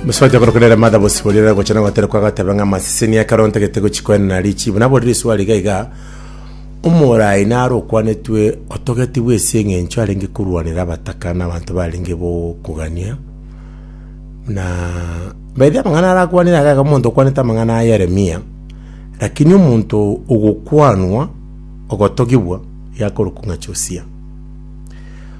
Mosubati okorokwa nere Martha Bosibori ere gocha na goterekwa agateba ng'a amasese niyo ekero ntagete gochikwenera na richibu. Naborire eswali iga iga, Omoraai naro okwanetwe otogetigwe ase eng'encho arenge korwanera abataka na abanto barenge bokogania? Na by the way amang'ana arakwanire aria iga omonto okwanete amang'ana a Yeremia, lakini omonto ogokwanwa ogotogigwa yakorokwa ng'a Josia.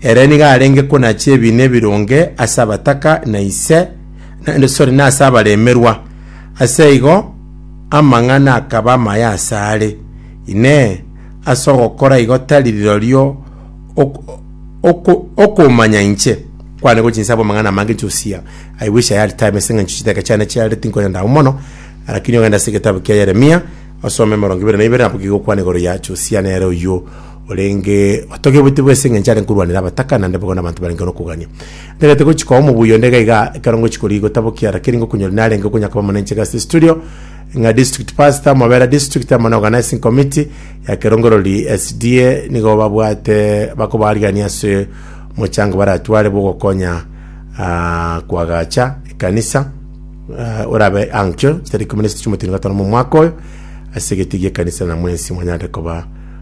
Ere nigo arenge konachia ebiina ebironge ase abataka na ise, naende sorry, na ase abaremerwa. Ase igo amang'ana akaba amaya ase are. Inee! Ase ogokora igo tari rirorio ok- oko- okomanya inche? Kwane gochia inse abwo amang'ana amange inche usia. I wish I had time ase eng'encho chitaka chiane chiarire tinkonya ndao mono, lakini ogende ase egetabu kia Yeremia, osome emerongo ibere na ibere, nabo kegokwana igoro ya Josia nere oyio Orenge otogebwete bwese engencho are nkorwanera abataka, naende bobe na abanto barenge nokogania. Nterete gochi koa omobuya onde iga iga, ekero ngochi koria igo taboki ara keri ngokonyora narenge okonya koba omonenche Gusty Studio, ng'a District Pastor, Mobera District, amo na Organizing Committee ya Kerongerori SDA nigo babwate bakobarigania ase omochango baratware bw'ogokonya ah, koagacha ekanisa eh, orabe ankio chitariki ikomi na isatu chi'omotienyi gatano momwaka oyo ase egete gi'ekanisa na mwensi mwanyare koba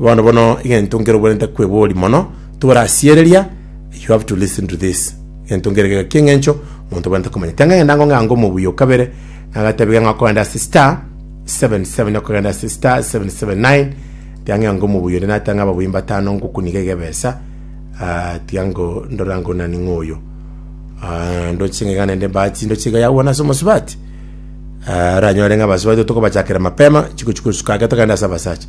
Bono bono egento nkere obwenerete kweboria mono, toborasiereria, you have to listen to this. Egento nkere gega ki'engencho omonto obwenerete komanya. Tianga ngenda ngo ng'ange omobuya o kabere, nagatebia ng'a okogenda ase star 77 okogenda ase star 779 tianga ng'ange omobuya onde nateba ng'a ababuya mbatano ngokuniga iga ebesa ah, tiga ngo ndora ngo nani ng'oyo Ah, ndoche ng'iga naende embati ndoche iga yagwana ase omosubati Ah, oranyore ng'a abasubati tokobachakera mapema chiko chikosuka ake togenda ase abasacha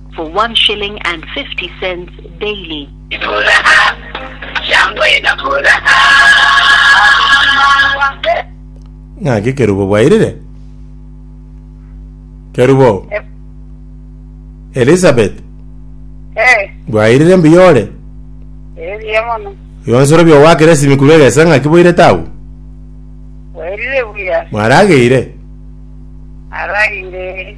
for one shilling and fifty cents daily. Ng'aki ekerubo bwairire? Kerubo, Elizabeth, Eh, bwairire mbuya ore? ebiya mono. Yonsoro bio gwakera esimi korwa egesa ng'aki bwairete agwo? Wairire buya. Mwarageire? Aragire.